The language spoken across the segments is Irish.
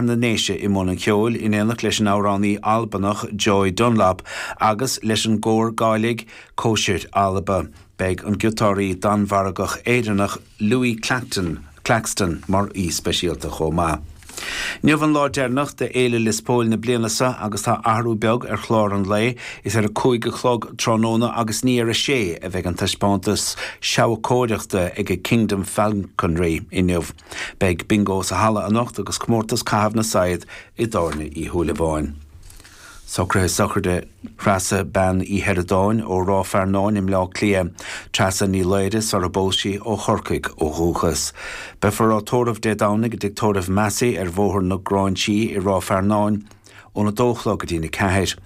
na nDéise i mbun an cheoil in éineacht leis an amhránaí Albanach Joy Dunlop agus leis an gcór Gàidhlig 'Cóisir Alba'. Beidh an giotáraí Danmhargach Éireannach Louis Clacton, Claxton, mar aoi speisialta chomh maith. Inniu an lá deireanach de Fhéile Lios Póil na bliana seo agus tá athrú beag ar chlár an lae, is ar a cúig a chlog tráthnóna agus ní ar a sé a bheidh an taispeántas seabhacóireachta ag Kingdom Falconry inniu. Beidh Bingo sa Halla anocht agus comórtas Caitheamh na Saighead i dTábhairne Uí Shúilleabháin. Socruithe Sochraide Threasa Bean Uí Sheireadáin ó Ráth Fearnáin i mBleá Cliath, Treasa Ní Laoire, sar a bpós sí, ó Chorcaigh ó dhúchas. Beifear á tórramh Dé Domhnaigh i dTigh Tórraimh Massey ar Bhóthar na Gráinsí i Ráth Fearnáin óna 2 a chlog go dtí'n 4.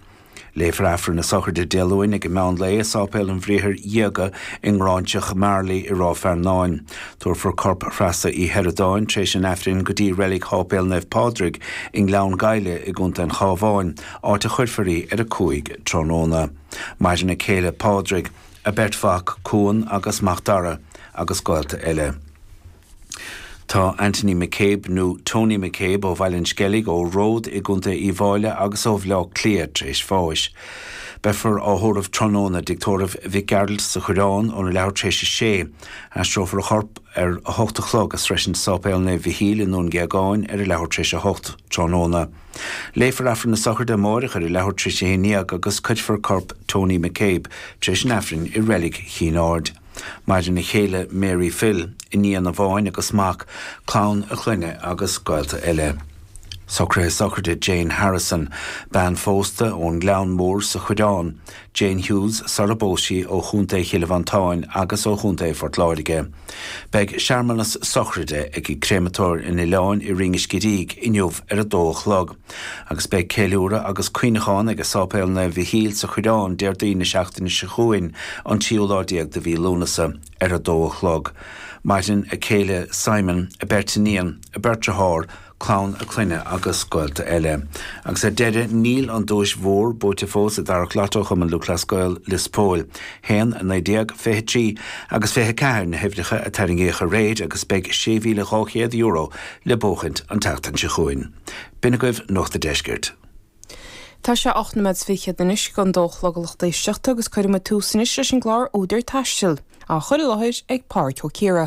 Léifear Aifreann na Sochraide Dé Luain ag meán lae i Sáipéal an Bhriathair Dhiaga i nGráinseach Mharlaí i Ráth Fearnáin. Tabharfar corp Threasa Uí Sheireadáin tar éis an Aifrinn go dtí Reilig Sháipéal Naomh Pádraig i nGleann Ghaibhle i gContae an Chábháin, áit a chuirfear í ar a cúig tráthnóna. Maireann a céile Pádraig, a beirt mhac Cuan agus Macdara, agus gaolta eile. Tá Anthony McCabe, nó Tony McCabe, ó Bhaile an Sceilg, ó Ród i gContae Uíbh Fhailí agus ó Bhleá Cliath tar éis bháis. Beifear á thórramh tráthnóna i dTigh Tórraimh Mhic Gearailt sa Choireán óna leathuair tar éis a sé. Aistreofar a chorp ar a hocht a chlog ag sroisint Sáipéal Naomh Mhichíl i nDún Géagáin ar a leathuair tar éis a hocht tráthnóna. Léifear Aifreann na Sochraide amáireach ar a leathuair tar éis a haon dhéag agus cuirfear corp Tony McCabe tar éis an Aifrinn i Reilig Chinn Aird. Maireann a chéile Mary Phil, iníon amháin agus mac, clann a chlainne agus gaolta eile. Socruithe sochraide Jane Harrison, bean phósta ón nGleann Mór sa Choireán, Jane Hughes, sar a bpós sí ó Chontae Chill Mhantáin agus ó Chontae Phort Láirge. Beidh searmanas sochraide ag Créamatóir an Oileáin i Rinn an Scidígh inniu ar a dó a chlog. Agus beidh ceiliúradh agus cuimhneachán ag Sáipéal Naomh Mhichíl sa Choireán Déardaoin na seachtaine seo chugainn, an tríú lá déag de mhí Lúnasa, ar a dó a chlog. Maireann a céile Simon, a beirt iníon, a beirt dearthár, clann a clainne agus gaolta eile. Agus ar deireadh, níl an duais mhór buaite fós i dtarrac lotto Chumann Lúthchleas Gael Lios Póil. 1, 19, 23 agus 24 na huimhreacha a tarraingíodh aréir agus beidh €6,200 le buachaint an tseachtain seo chugainn. B'in agaibh Nuacht a' Deiscirt. Tá sé ocht nóiméad 's fichead anois chun a dó a chlog a lucht éisteachta agus cuirfidh muid tús anois leis an gclár Údar Taistil, á chur i láthair ag Pádhraic Ó Ciardha.